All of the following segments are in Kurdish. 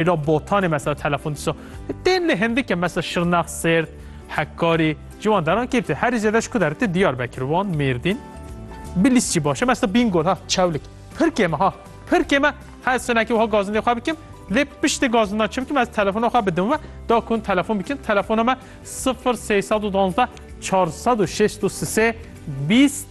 Îro botanê mesela telefon dîsa tên lê hindike mesela Şirnex, Sêrt, Hekkarî ji wan deran kê tê? Herî zêde ji ku der tê Diyarbekir, Wan, Mêrdîn. Bilîs jî baş e mesela Bîngol ha Çewlik. Pir kêm e ha. Pir kêm e her sinekê wiha gazindê xwe bikim lê piştî gazindan çi bikim ez telefona xwe bidim we da ku hûn telefon bikin telefona me sifir sey sed û duwazdeh çar sed û şêst û sisê bîst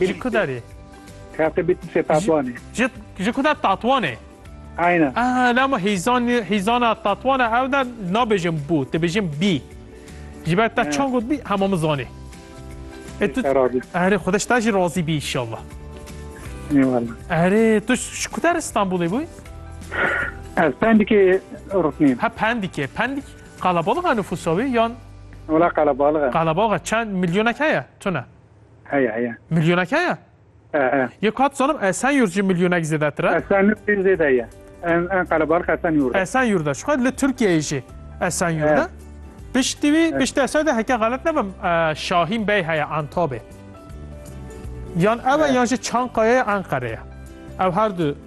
Ji ku de dê? Kate bit se tatwanê. Ji ji ku de tatwanê? Aynen. Ah, lama hîzan hîzana tatwana ew de nabêjin bû, dibêjin bî. Ji ber te çan got bî hema min zanê. E tu erê xwedeş te jî razî bî inşallah. Erê tu ji ku der İstanbulê bûyî? Ez pendikê rûtnîm. Ha pendikê, pendik Qalabalığa nüfusa wê yan? Wela qalabalıg e. Qalabalığa çend milyonek heye tune? Heye heye. Milyonek heye? E e. Yê ku hat zanim Esenyurt jî milyonek zêdetir e. Esenyurt jî zêde ye. En en qalabalıg Esenyurt e. Esenyurt e. Şixwe li Tirkiyeyê jî Esenyurt e. Piştî wî piştî Esenyurtê heke xelet nebim Şahîn Bey heye Antabê. Yan ew e yan jî Çankayayê Enqerê ye. Ew her du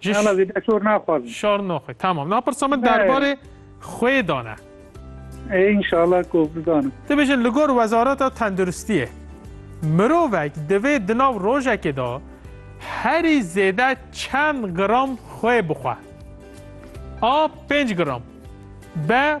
Ji Nana vê de şor naxwazim. şor noxê. Tamam. Na pirsa min Ne. derbarê xwê de ne. Ê inşallah ku bizanim. Tu bêjin li gor wezareta tenduristiyê mirovek divê di nav rojekê de herî zêde çend gram xwê bixwe? A. Pênc gram B.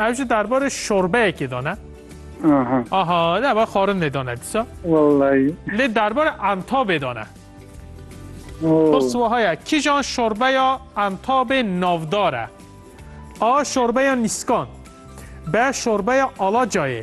Ev jî derbarê şorbeyekê de ne? Aha. Aha, ne va xarindê de ne dîsa. Wallahî. Lê derbarê entabê de ne. Oh. Pirs wiha ye, kîjan şorbeya entabê navdar e? A. Şorbeya nîskan. B. Şorbeya alacayê.